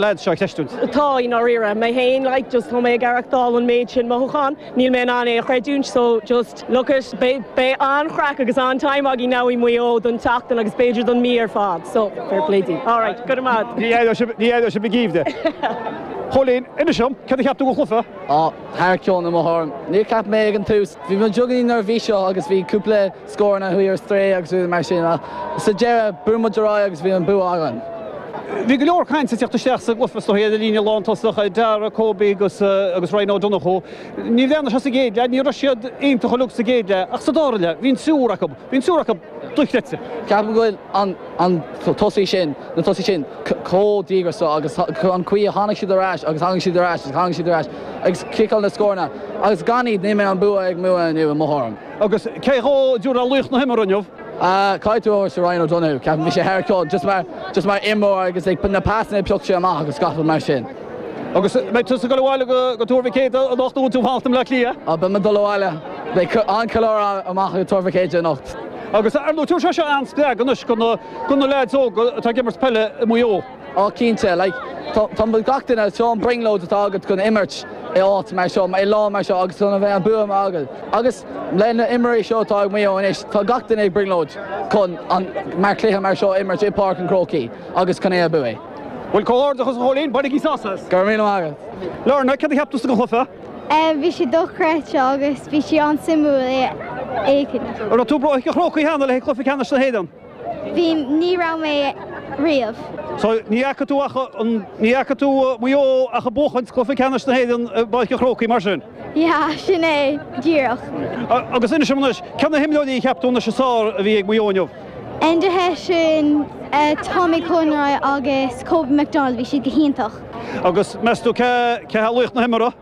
lads seo ag ceistiúint. Tá, i ndáiríre. Mé féin, like, just tá mé ag aireachtáil an méid sin mothúchán. Níl mé in ann é a chreidiúint so just, look it, beidh, beidh an-chraic agus an-time againn now i Maigh Eo don tseachtain agus b'fhéidir don mí ar fad so fair play di. All right, go raibh maith agat. Ní éireoidh sibh, ní éireoidh sibh ag aoibh di. Cóilín, inis dom, céard a cheap tú dhon chluiche? Á, tharrac ceol na mbothán. Níor cheap mé ag an tús, bhí mé beagáinín neirbhíseach agus bhí cúpla scóranna a chuaigh ar strae agus rudaí mar sin ach sa deireadh chuaigh muid ar aghaidh agus bhí an bua againn. Bhí go leor cainte ag teacht isteach sa gcluiche ar an gcéad líne lántosach, Darragh, Kobe agus Ryan Ó Donnchú. Ní raibh siad sa gcéad leath, ní raibh siad iontach uilig sa gcéad leath ach sa dara leath bhí an triúr acu, bhí an triúr acu dochreidte. Ceapaim go bhfuil an tosaí sin, na tosaí sin chomh díograiseach agus an chaoi a tháinig siad ar ais agus tháinig siad ar ais agus tháinig siad ar ais ag ciceáil na scóranna agus gan iad ní bheadh an bua ag Maigh Eo inniu i mo thuairim. Agus cé dhó a dtiúrfá laoch na himeartha inniu? Caithfidh tú a thabhairt do Ryan O'Donoghue. Ceapaim go bhfuil sé thar cionn just mar, just mar imreoir agus like na pasanna a phioc sé amach agus gach rud mar sin. Agus beidh tusa ag dul abhaile go, go Tuar Mhic Éadaigh anocht nó an bhfuil tú ag fanacht i mBleá Cliath? Á, beidh mé ag dul abhaile. Beidh an-cheiliúradh amach i Tuar Mhic Éadaigh anocht. Agus ar ndóigh, tabharfaidh sé seo an-spreagadh anois go na, go na leaids óga atá ag imirt peile i Maigh Eo. Á, cinnte, like, do gach duine seo an brionglóid atá agat chun imirt i áit mar seo, i lá mar seo agus chun a bheith an bua agat. Agus le na himreoirí seo atá ag Maigh Eo anois, tá gach duine ag brionglóid chun an mórchluiche mar seo a imirt i Páirc an Chrócaigh agus chun é a bhuachan. Bhuel, comhghairdeachas a Chóilín, bainigí sás as! Go raibh míle maith agat. Lorna, cad a cheap tú den chluiche? Bhí sé dochreidte agus bhí sé an-suimiúil é a fheiceáil. Raibh tú i bPáirc an Chrócaigh cheana le haghaidh cluiche ceannais na hÉireann? Bhí, ní raibh mé riamh. So ní fhaca tú ach, ní fhaca tú Maigh Eo ach ag buachaint Cluiche Ceannais na hÉireann i bPáirc an Chrócaigh, mar sin? Yeah, sin é, díreach. Agus inis dom anois, cé na himreoirí a cheap tú anois is fearr a bhí ag Maigh Eo inniu? Enda Hession, Tommy Conroy agus Kobe McDonald, bhí siad go hiontach. Agus meas tú cé, cé hé laoch na himeartha?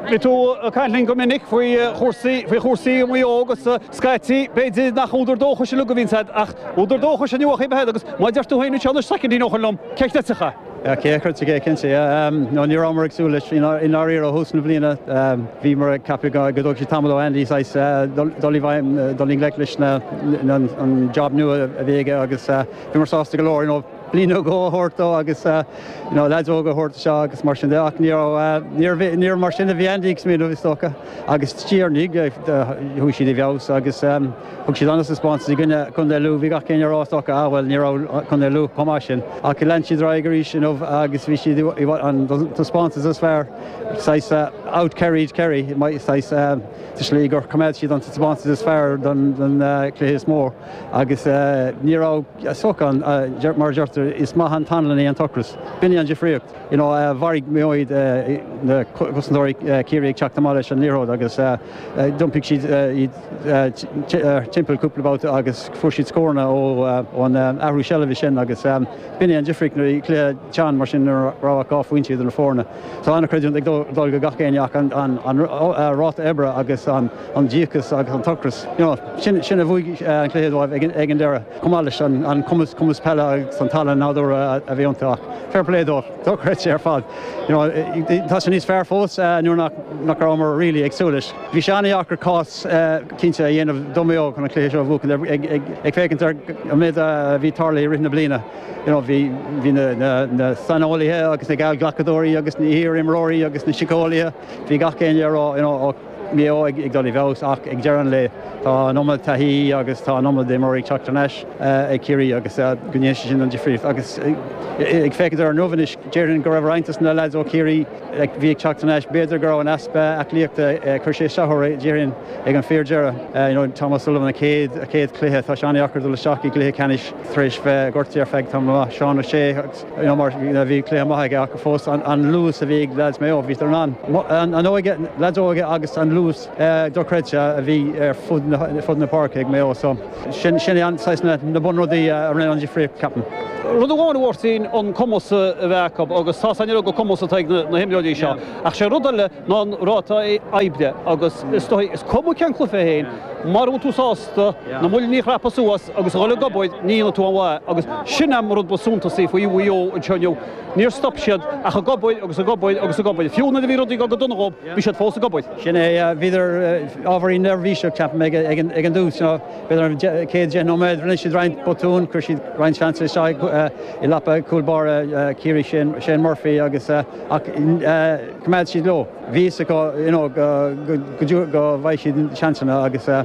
Bhí tú ag caint linn go minic faoi chúrsaí, faoi chúrsaí i Maigh Eo agus scaití. B'fhéidir nach údar dóchais a thugaidís uaid ach údar dóchais inniu a chaithfidh a bheith agat agus má deir tú féin anseo na soicindí nó chun liom, ceist eiteacha. Sea, cé a chuir tigh éicint di? Nó ní rabhamar ag súil leis. I ndáiríre, ó thús na bliana bhíomar ag ceapadh go dtógfadh sé tamall ó Andy saghas dul i bhfeidhm, dul i ngleic leis an job nua a bhí aige agus bhíomar sásta go leor, you know. bliain nó dhó a thabhairt dó agus leaids óga a thabhairt anseo agus mar sin de ach níor mar sin a bhí Andy ag smaoineamh is dócha agus sure ní chuaigh siad i bhfeabhas agus thug siad an-taispeántas i gcoinne Contae Lú, bhí gach éinne ag rá is dócha ah bhuel ní raibh Contae Lú chomh maith sin ach lean siad ar aghaidh arís inniu agus bhí siad i bhfad an taispeántas is fearr saghas out Kerryed Kerry saghas sa slí gur choimeád siad an taispeántas is fearr don chluiche is mó. Agus ní raibh soc ann. Mar a deirtear, is maith an t-anlann é an t-ocras. B'in í an difríocht. Mharaigh Maigh Eo na cosantóirí Ciarraí ag teacht amach leis an liathróid agus d'iompaigh siad iad timpeall cúpla babhta agus fuair siad scóranna ón athrú seilbhe sin agus b'in í an difríocht nuair a bhí cluiche teann mar sin nuair nach raibh ach dhá phointe idir na foirne. So an-chreidiúint ag dul go gach éinne ach an ráta oibre agus an an díocas agus an t-ocras sin a bhuaigh an cluiche dóibh ag an deireadh, chomh maith leis an cumas peile agus an tallann nádúrtha a bhí iontu. Ach fair play dóibh, dochreidte ar fad. Tá sé níos fearr fós nuair nach rabhamar really ag súil leis. Bhí sé an-deacair cás cinnte a dhéanamh do Mhaigh Eo chun an cluiche seo a bhuachan ag féachaint ar an méid a bhí tarlaithe i rith na bliana. Bhí na saineolaithe agus na geallghlacadóirí agus na hiar-imreoirí agus na síceolaithe, bhí gach éinne ag rá, Maigh Eo ag dul i bhfeabhas ach ag deireadh an lae tá an iomad taithí agus tá an iomad imreoirí ag teacht thar n-ais ag Ciarraí agus go ndéanann sé sin an difríocht agus ag féachaint air inniu anois déarfainn go raibh roinnt dos na leaids ó Chiarraí a bhí ag teacht thar n-ais b'fhéidir go raibh an easpa aclaíochta gur chuir sé isteach orthu déarfainn ag an fíor deireadh you know Tom O'Sullivan a chéad a chéad chluiche tá sé an-deacair dul isteach i gcluiche ceannais tar éis bheith gortaithe ar feadh tamall maith Seán O'Shea Mar sin, bhí cluiche maith aige ach fós an luas a bhí ag leaids Maigh Eo, bhíodar in ann an óige, leaids óige agus an luas dochreidte a bhí ar fud na páirce ag Maigh Eo. So sin é an saghas na bunrudaí a rinne an difríocht, ceapaim. Rud amháin a Mháirtín an cumas a bheith acu agus tá a fhios againn ar ndóigh an cumas atá ag na himreoirí seo ach sé an rud eile ná an ráta oibre agus is dóigh, is cuma cén cluiche é fhéin, mura bhfuil tú sásta. do mhuinchillí a chrapadh suas agus a dhul ag obair ní dhéanfaidh tú aon mhaith agus sin an rud ba suntasaí faoi Mhaigh Eo anseo inniu níor stop siad ach ag obair agus ag obair agus ag obair fiú nuair a bhí rudaí go go dona dhóibh bhí siad fós ag obair. Sin é bhíodar ábhairín neirbhíseach ceapaim ag ag an dtús nó bhíodar an céad deich nóiméad rinne siad roinnt botún chuir siad roinnt seans isteach i lapa cúl báire Ciarraí sin Shane Murphy agus ach coimeád siad leo bhí fhios acu you know go go dtí go bhfaighidh siad seansanna agus eh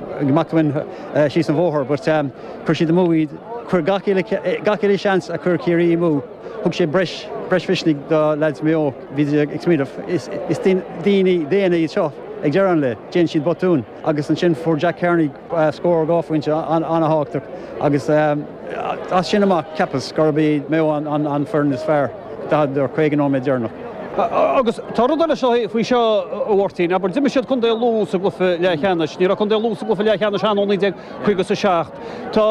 amach ansin síos an bóthar but chuir siad amú iad, chuir gach uile, gach uile sheans a chuir Ciarraí amú, thug sé breis, breis misnigh do leaids Maigh Eo, bhí siad ag smaoineamh is, is daoine daonna iad seo ag deireadh an lae, déanann siad botúin agus ansin fuair Jack Carney scór dhá phointe an-thábhachtach agus as sin amach cheapas gurb iad Maigh Eo an foireann is fearr. 40 eur, 50 nóiméad deireanach. Agus tá rud eile seo faoi seo, a Mháirtín, abair, d'imir siad contae Lú sa gcluiche leathcheannais, ní raibh contae Lú sa gcluiche leathcheannais ann ó 1957. Tá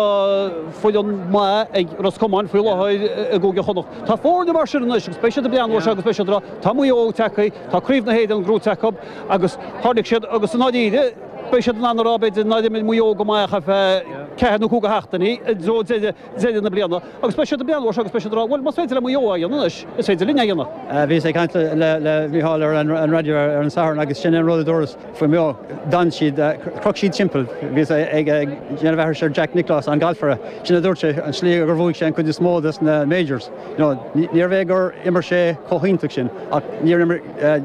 foireann maith ag Ros Comáin faoi láthair i gCúige Chonnacht. Tá foirne mar sin anois agus beidh siad ag breathnú ar seo agus beidh siad ag rá, tá Maigh Eo tagtha, tá Craobh na hÉireann buaite acu agus tháinig siad agus i ndáiríre, beidh siad in ann a rá, b'fhéidir, nár imir Maigh Eo go maith ach ar feadh ceathair nó cúig sheachtainí i dtreo deireadh. deireadh na bliana agus beidh siad ag breathnú ar seo agus beidh siad ag rá, bhuel, más féidir le Maigh Eo é a dhéanamh anois, is féidir linne é a dhéanamh. Bhíos ag caint le Micheál ar an raidió ar an Satharn agus sin é an rud a dúras faoi Mhaigh Eo, d'fhan siad, chroch siad timpeall. Bhíos ag déanamh aithris ar Jack Nicklaus, an galfaire, sin a dúirt sé, an tslí gur bhuaigh sé an chuid is mó de na majors ná níorbh é gur imir sé chomh hiontach sin ach níor imir,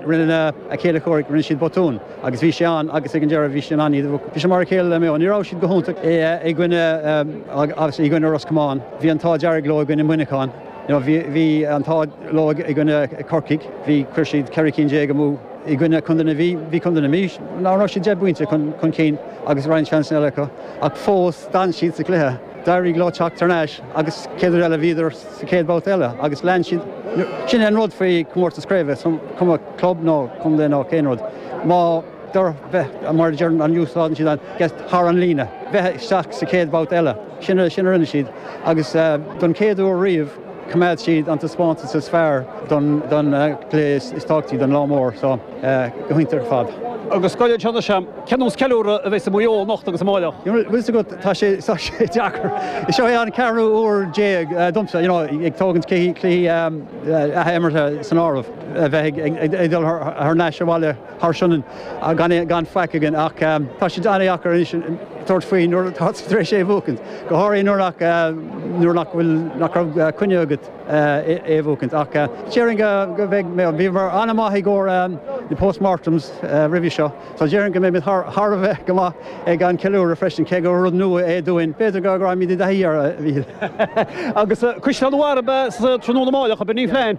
rinne a chéilí comhraic, rinne siad botún. Agus bhí sé ann agus ag an deireadh bhí sé in ann iad a bhuachaint, bhí sé mar a chéile le Maigh Eo. Ní raibh siad go hiontach i gcoinne, i gcoinne Ros Comáin. Bhí an t-ádh dearg leo i gcoinne Muineachán. Now bhí bhí an t-ádh leo i gcoinne Corcaigh. Bhí chuir siad ceithre cinn déag amú i gcoinne Contae na Mí. Bhí Contae na Mí ná raibh siad deich bpointe chun chun cinn agus roinnt seansanna eile acu ach fós d'fhan siad sa gcluiche. D'éirigh leo teacht thar n-ais agus chéad uair eile bhíodar sa chéad bhabhta eile agus lean siad. Sin é an rud faoi comórtas craoibhe, is cuma club nó contae nó aon rud, más féidir bheith, mar a deireann an, úsáideann siad an get thar an líne, bheith isteach sa chéad bhabhta eile. Sin a rinne siad agus don chéad uair riamh, Choimeád siad an taispeántas is fearr don chluiche is tábhachtaí don lá mór so go hiontach ar fad. Agus scoil an tseana sem, cén nós ceiliúradh a bheidh sa Maigh Eo anocht agus amáireach. Bhfuil fhios agat, tá sé deacair. Seo é an ceathrú uair déag domsa, you know, ag tógaint cluichí athimeartha san áireamh, a bheith ag dul thar n-ais abhaile. thar Sionainn gan faic againn ach tá sé an-deacair anois tabhairt faoi nuair atá tú tar éis é a bhuacaint, go háirithe nuair nach bhfuil, nach raibh coinne agat é a bhuacaint. Ach déarfainn go mbeidh, bhíomar an-mhaith i gcomhair na postmortems roimhe seo so déarfainn go mbeimid thar a bheith go maith ag an ceiliúradh freisin cé gur rud nua é dúinn, b'fhéidir go raghaimid i dtaithí air a Mhichíl. Agus Caisleán an Bharraigh sa tráthnóna amáireach, a Bhirnie Flein!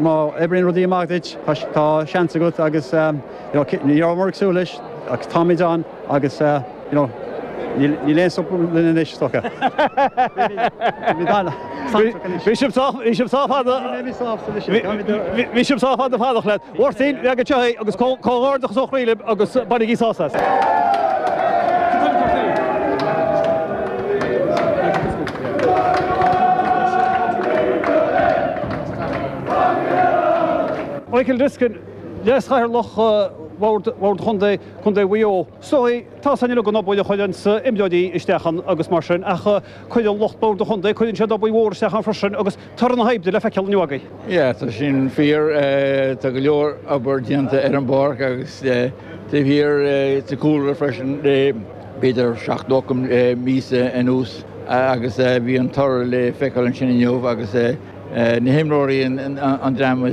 má oibríonn rudaí amach duit, tá seans agat agus you know ní rabhamar ag súil leis ach táimid ann agus you know níl aon stop linn anois is dócha. Beimid ann. Bhí sibh sách fada. Bhí sibh sách fada ag fanacht le. Mháirtín, leag anseo é agus comhghairdeachas ó chroí libh agus bainigí sásamh as. Michael Diskin, Leas-Chathaoirleach Bhord Chontae Chontae Mhaigh Eo, Sorry, tá a fhios againn an obair a chuireann imreoirí isteach ann agus mar sin ach cuireann lucht Bhord an Chontae, cuireann siad obair mhór isteach ann freisin agus Toradh na hoibre le feiceáil inniu agaibh. Yeah, tá sin fíor. Tá go leor obair déanta ar an bpáirc agus taobh thiar sa chúlra freisin, b'fhéidir seacht nó ocht míosa anuas agus bhí an toradh le feiceáil ansin inniu agus na himreoirí, an dream